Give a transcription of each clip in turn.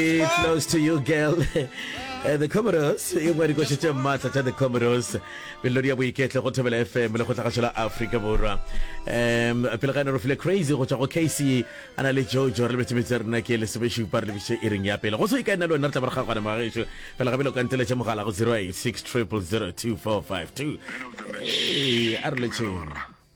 It flows to you girl Eh, the comoros e ngwe dikoši tše maatla tša the comoros melodi ya boiketlo go thobela fm le go tlagašo la afrika borwa um pele ga ene rofile crazy go tšwa go casey a na le jojo re lebetse metse rena ke lesomešupa re lebise e reng ya pele go se ka ena le wena re tla moraga gona magaešo fela gabele o ka nteletša mogala go 086 000 2452 ee a re letšheng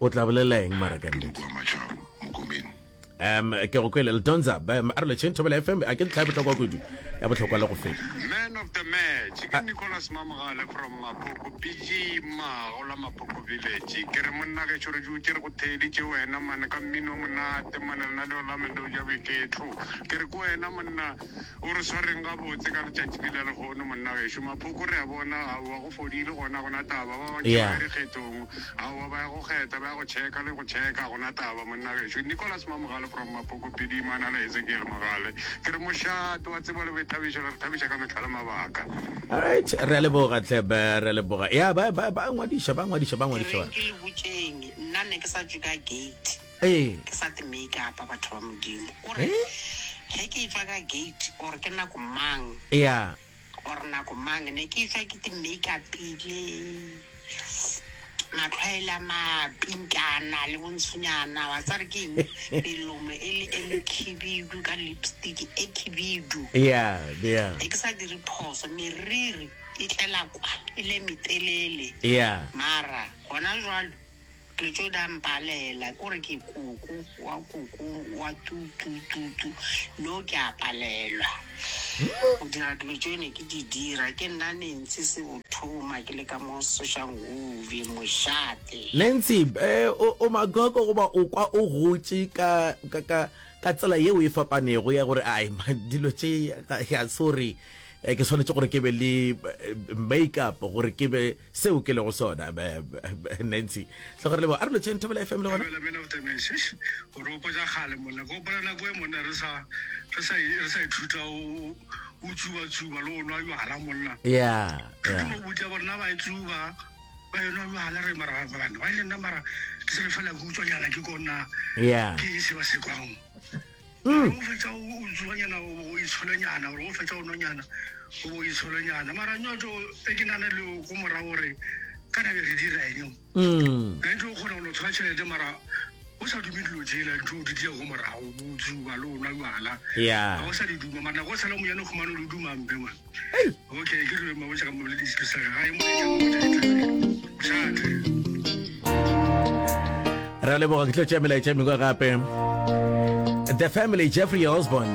o tla bolela eng mara ka nnete um ke go kwele ledonza um, a re lecheng thobela fm a ke ntlha ya botlhokwa kudu ya botlhokwa le go feta man of the match ke nicolas mamogale from mapoko bg mago la mapoko village ke re monna ge tšhore ju ke re go theeditše wena mane ka mmino monate mane rena le olame leo ja boiketlo ke re ke wena monna O re swareng gabotse ka letšatši le la lehono, monna gešo. Maphoko re a bona, aowa, go fodile gona, ga go na taba. Ba bantši ba ya dikgethong, aowa, ba ya go kgetha, ba ya go tšheka le go tšheka, ga go na taba, monna gešo. Nicholas Mamogale from Maphoko, Pedi Imana le Ezekiel Mogale. Ke re mošate, wa tseba le boithabišo le re thabiša ka mehla le mabaka. Alright, re a leboga hle ba, re a leboga. Ya, ba, ba, ba ngwadiša, ba ngwadiša, ba ngwadiša. Ke reng ke le botšeng, nna nne ke sa tšwe ka gate. Ee. Ke sa te make up batho ba Modimo. O re, Ge ke etšwa ka gate, or ke nako mang, Ea. or nako mang, ne ke etšwa ke te make upile, matlho a e le a mapinkana le bontshonyana, wa tseba re ke eng, melomo e le e mekhibidu ka lipstick e khibidu. Ea, ea. Ne ke sa dire phoso, meriri e tlela kwa, e le e metelele. Ea. Mara, gona jwalo, Ke tšo da mpalela ke gore ke koko wa koko wa tu tu tu tu no ke a palelwa go dira dilo tšeo ne ke di dira ke nna nentsi se o thoma ke le ka mo sošang ove mošate Nancy, eh, o, o magoko goba o kwa o gotše ka, ka, ka, ka tsela yeo e fapanego ya gore ai ma- dilo tše ga ga se gore eh, ke swanetše gore ke be le eh, make-up gore ke be seo ke lego sona nancy tlogore lebo a re lotšheng thobela fm le gona o re opotsa kgale monna ka opela nako e monna re sa re sa re sa ithuta o o tsuba tsuba le o nwa jwala monna ya ya o botsa bona ba itsuba ba yona jwala re mara ba bana ba nna mara ke se fela go utswa nyana ke kona ya ke se ba se kwang Mm. O fetša o o tsuanyana o bo o itsholonyana gore o fetša o nonyana o bo o itsholonyana mara nyoto e ke nane le o ko mora gore ka nabe re dira eng Mm. nete o kgona go no thola tšhelete mara o sa dume dilo tsela ntho o di dira ko morago botsi o ba le o nwa jala Yeah. ga o sa di duma mara nako o sala monyane kgomane o di dumampe ngwana re a leboga ke tlo tšea melaetša mengwe gape the family jeffrey osborne